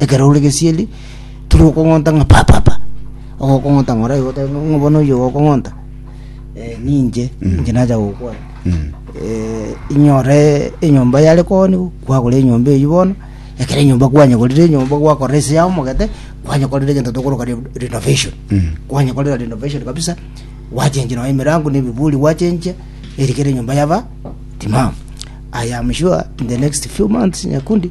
ekero ore gesieri tiri okong'onta ng'a pa pa pa ogokong'onta ng'a oraigwe otabe ng'a bono oyio ogokong'onta eh, ninche ninche nacha gokwana eh, inyore enyomba yare koni kwagora enyomba eyi bono ekero enyomba kwanyegorire enyomba gwakorera ase yao omogete kwanyekorera egento tokoroka re- renovation kwanyekorera renovation kabisa gwachenchia nonye emirango na ebiburi gwachenchia erikere enyomba yaba timamu i am sure in the next few months nyakundi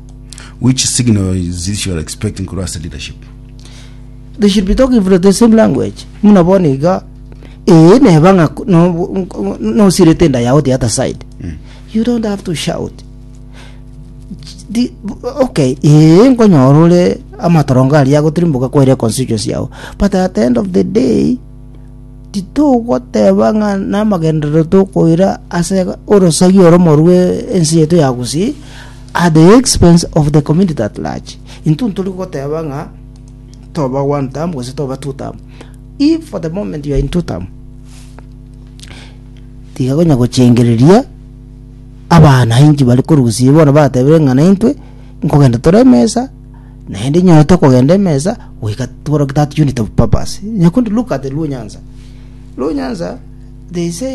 Which signal is this you are expecting korwa ase leadership? they should be talking from the same language muna bono iga ee neba ng'a ko- no- nko- nosirete enda yao the other side you don't have to shout Di- okay ee nkonyora ore amatorongo aria agotirimboka kwaire constituency yao but at the end of the day titogoteba ng'a namagenderero tokoira ase orosagi oromo rwe ense yaito ya gusii at the expense of the community at large. Intwe ntori goteba ng'a toba one term gose toba two term. If for the moment you are in two term, tiga konya gochengereria abana inki bari korusia bono batebire ng'a naintwe nkogenda tore emesa naende nyoe tokogenda emesa goika tworoke that unit of purpose. Nyakundi look at the Luo Nyanza. Luo Nyanza they say